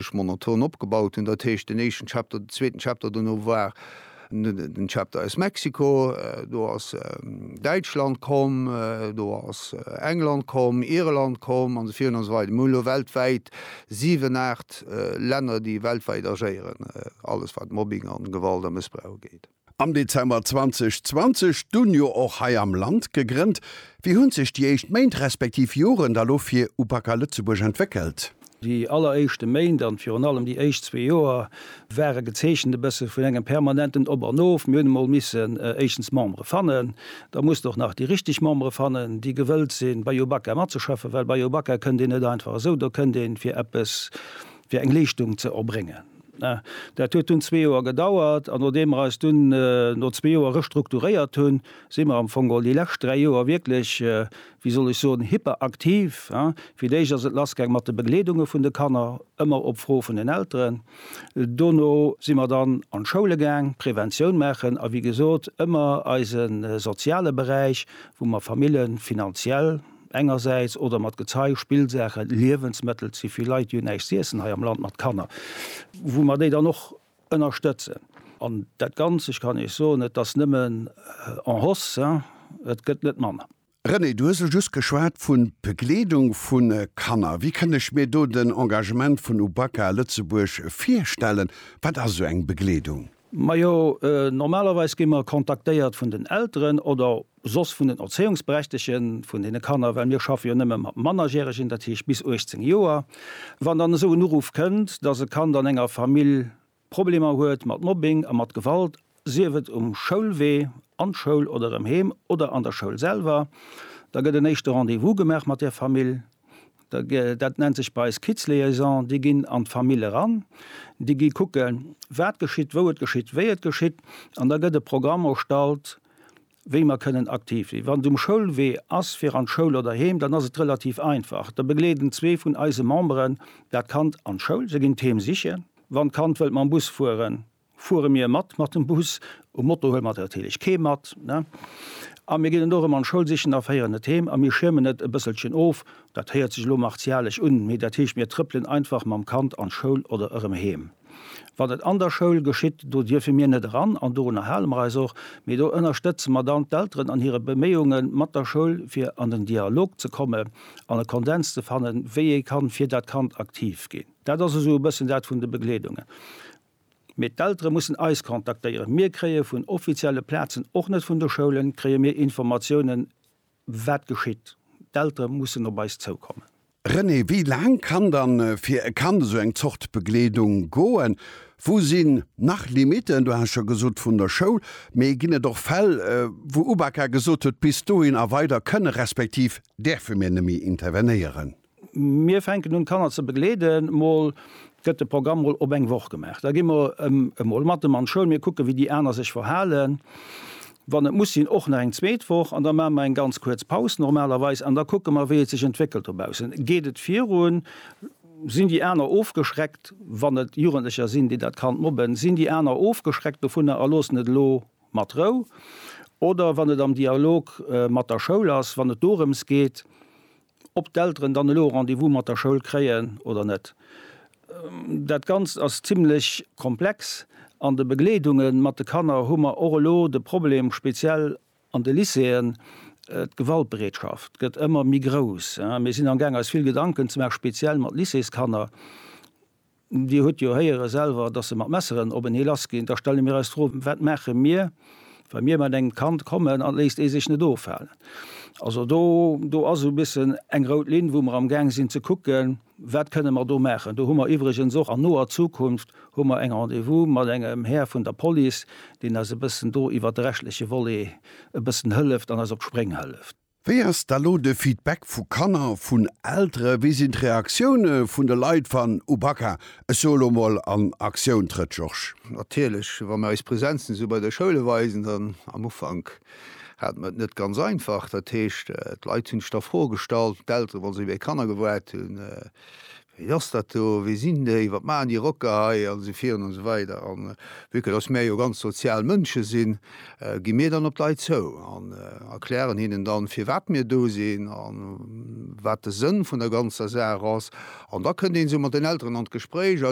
ech monoton opgebaut hunn, dat heescht den éischten Chapter, den zweeten Chapter, dono war den Chapter aus Mexiko, do ass Däitschland komm, do ass England komm, Irland komm an esou virun an esou weider. Mir hunn elo weltwäit siwen, aacht Länner, déi weltwäit agéieren, alles wat Mobbing an Gewalt a Mëssbrauch ugeet. Am Dezember 2020, dunn jo och hei am Land gegrënnt. Wéi hunn sech déi éischt Méint respektiv Joren da lo fir Upaca Lëtzebuerg entwéckelt? Déi alleréischte Méint an virun allem déi éischt zwee Joer ware gezeechent e bësse vun engem permanenten Op an Of. Mir hunn emol missen éischtens Membere fannen. Da muss de och nach déi richteg Membere fannen, déi gewëllt sinn, bei Upaca matzeschaffen, well bei Upaca kënnt een net einfach esou. Do kënnt ee fir eppes. fir eng Leeschtung ze erbréngen. Dat huet dunn zwee Joer gedauert, an nodeem mer eis dunn no zwee Joer restrukturéiert hunn, si mer am Fong all déi lescht dräi Joer wierklech, wéi soll ech soen, hyperaktiv. Fir d'éischt ass et lassgaang mat de Begleedunge vun de Kanner, ëmmer op Fro vun den Elteren. Dono si mer dann an d'Schoule gaang, Preventioun maachen, a wéi gesot ëmmer eise soziale Beräich, wou mer Famille finanziell, engersäits oder mat Gezei, Spillsaachen, Liewensmëttel, ze vill Leit, déi hunn näischt z'iessen hei am Land mat Kanner, wou mer déi dann och ënnerstëtzen. An dat Ganzt, ech kann Iech soen, et ass nëmmen en hausse, et gëtt net manner. René, du hues elo just geschwat vu Begleedung vu Kanner. Wéi kënn ech mir do den Engagement vun Ubaka Lëtzebuerg virstellen? Wat ass esou eng Begleedung? Majo, normalerweis gi mer kontaktéiert vun den Elteren oder soss vun den Erzéiungsberechtege vun deene Kanner, well mir schaffe jo nëmme mat Mannerjäregen, dat heescht bis 18 Joer, wann dann esou en Uruff kënnt, dass e Kand an enger Famill Problemer huet mat Mobbing a mat Gewalt, sief et um Schoulwee an d'Schoul oder erëm heem oder an der Schoul selwer, da gëtt en éischte Rendez-vous gemaach mat där Famill. Dat nennt sech bei eis Kids-Liaison. Déi ginn an d'Famill eran, déi gi kucken, wat geschitt, wou et geschitt, wéi et geschitt, an da gëtt e Programm erstallt, wéi mer kënnen aktiv sinn. Wann et um Schoulwee ass, fir an d'Schoul oder heem, dann ass et relativ einfach. Da begleeden zwee vun eise Memberen dat Kand an d'Schoul. Se ginn d'Heem sichen. Wann d'Kand wëllt mam Bus fueren, fuere mir mat mat dem Bus. Um Moto huele mer natierlech kee mat. A mir ginn et och erëm an d'Schoul sichen a féieren et heem. A mir schiermen et e bësselchen of. Dat héiert sech elo martialesch un, mee dat heescht, mir trëppelen einfach mam Kand an d'Schoul oder erëm heem. Wann et an der Schoul geschitt, do dierfe mir net eran an dorunner hale mer eis och, mee do ënnerstëtze mer dann d'Elteren an hire Beméiunge mat der Schoul, fir an den Dialog ze komme an e Kondens ze fannen, wéi ee kann fir dat Kand aktiv ginn. Dat ass esou e bëssen dat vun de Begleedungen. Mee d'Eltere mussen eis kontaktéieren. Mir kréie vun offizielle Plazen, och net vun de Schoulen, kréie mir Informatiounen Wat geschitt? D'Eltere mussen op eis zoukommen. René, Wéi laang kann dann fir e Kand esou eng Zort Begleedung goen? Wou sinn nach Limiten? Du has scho gesot vun der Schoul, mee ginn et och Fäll, wou UBAKA gesot huet, bis dohin a weider kënne respektiv däerfe mir neméi intervenéieren? Mir fänken un d'Kanner ze begleeden. Mol gëtt de Programm mol op eng Woch gemaach. Da gi mer emol mat em an d'Schoul. Mir kucke wéi déi aner sech verhalen. Wann et muss sinn och nach eng zweet Woch. An da maache mer eng ganz kuerz Paus normalerweis. An da kucke mer wéi et sech entwéckelt dobaussen. Geet et virun? Sinn déi aner ofgeschreckt, wann et Jugendlecher sinn déi dat Kand mobben? Sinn déi aner ofgeschreckt dovunner a loossen et elo mat Rou? Oder wann et am Dialog mat der Schoul ass, wann et dorëms geet, ob d'Elteren dann elo e Rendez-vous mat der Schoul kréien oder net. Dat Ganzt ass zimmlech komplex. An de Begleedunge mat de Kanner hu mer och elo de Problem, speziell an de Lycéeën, d'Gewaltbereetschaft gëtt ëmmer méi grouss. Mir sinn amgaang eis vill Gedanken ze maachen, speziell mat Lycéeskanner, Dir hutt jo héiere selwer, dass se mat Messeren op en hee lassginn. Da stelle mir eis d'Fro, Wat maache mir, wa mir mat engem Kand kommen an et léisst ee sech net ofhalen? Also do, do ass esou e bëssen eng rout Linn, wou mer amgaang sinn ze kucken, Wat kënne mer do maachen? Do hu mer iwwregens och an noer Zukunft hu mer eng Rendez-vous mat engem Här vun der Police, deen eis e bëssen do iwwert de rechtleche Volet e bëssen hëlleft an eis op d'Spréng hëlleft. Wéi ass da lo de Feedback vu Kanner, vun Eltere? Wéi sinn d'Reaktioune vun de Leit, wann Ubaka, ech soe lo mol, an Aktioun trëtt, Georges? Natierlech, wa mir eis Präsenzen esou bei de Schoule weisen, dann, am Ufank hate mir et net ganz einfach. Dat heescht, d'Leit hunn sech da Froe gestallt, d'Eltere wa se iwwer hir Kanner gewaart hunn, Wéi ass dat do? Wie sinn déi? Wat maachen déi Rocker hei? An esou virun an esou weider. A vue que dass mär jo ganz sozial Mënsche sinn, gi mir dann op d'Leit zou an erklären hinnen dann, firwat mir do sinn a wat de Sënn vun der ganzer Saach ass. An da kënnt een esou mat den Elteren an d'Gespréich.